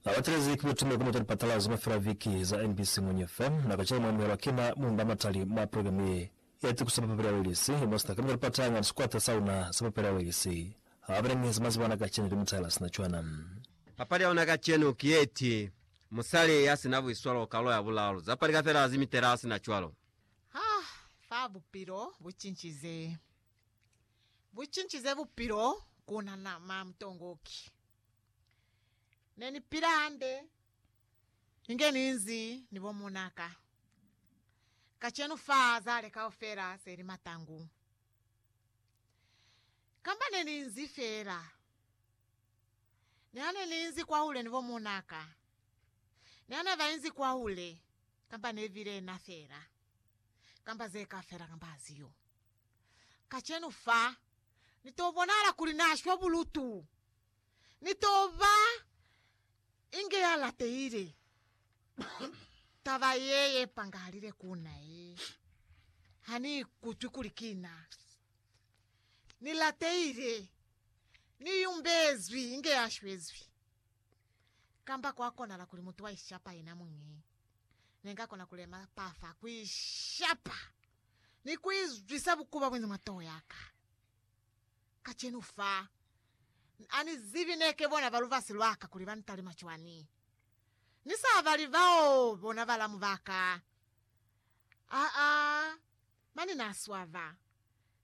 Na batelezi ki butume ku mita lipatalazo mafela viki za NBC Muñe fa, na ka cela mwa amuhelwa ki na Munda Matali mwa progilamu ye ya tiko sa papapeli ya Welisi, mo sina kamita lipata nga ni sikwata sa una sa papapeli ya Welisi. Ha ba belenge za maziba ana kacenu, ki mutahela sina cwana. Papali ya una kacenu ki ye ti, Musali ya sina buiswalo, Karolo ya Bulaalu. Za pali kafela zi mitela sina cwalo. Ha fa bupilo bu cincize. Bucincize bupilo kuna na ma mutongoki. Ne ni pila hande inge ninzi ni bo munaka. Kacenu fa zale kaufela seli matangu. Kamba ne ninzi fela. Nihane ninzi kwahule ni bo munaka. Nihane ba inzi kwahule kamba ne bile na fela. Kamba ze ka fela kamba aziyo. Kacenu fa, Ni to bonahala kuli Na shwa bulutu. Ni to ba inge ya latehile. Taba ye ye pangahalile ku na ye. Ha ni ikutwi kuli ki na. Ni latehile. Ni yumbezwi inge ya shwezwi. Kamba kwa konahala kuli mutu wa ishapa yena muñi. Ne nga kona ku lema pa fa ku ishapa. ni ku izwisa bukubabwe ni matoho ya ka. Kacenu fa, ha ni zibi ne ke bona ba lubasi lwa ka kuli ba ntalima cwani. Ni sa bali bao bona balamu ba ka. Aa, mane na swaba.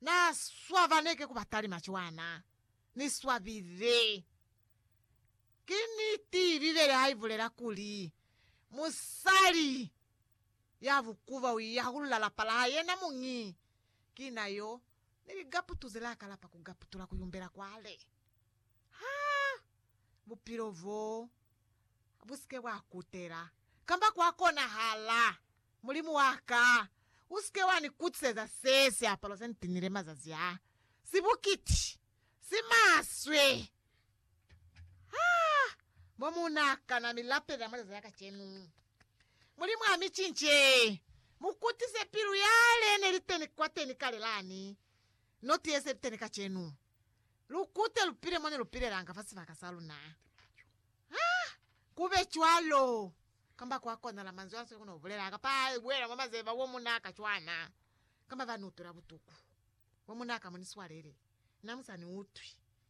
Na swaba ne ke ku ba talima cwana. Ni swabile. Ki niti Bibele ha i bulela kuli, Musali. Ya bukuba u yahulula lapa la yena muñi. Ki na yo ni ligaputu ze la kalapa ku gaputula ku yumbela kwale. Ha bupilo bo bu si ke bwa kutela, kamba kwa konahala, Mulimu wa ka, u si ke wa ni kutiseza se siapalo se ni tinile mazazi a, si bukiti, si maswe! Ha mo mu na kana mi lapela mwa leza ya kacenu. Mulimu a mi cince, mu kutise pilu yale ne li teni kwateni kale lani, no ti ye se li teni kacenu. Lu kute lu pile mo ne lu pilelanga fa sibaka sa luna. Ha ku be cwalo, kamba kwa konala manzwi a sili ku no bulela, kapa a buela mwa mazeba wo mu na ka cwana, kamba ba ni utwela butuku, wo mu na ka mo ni swalele, na mu sa ni utwi.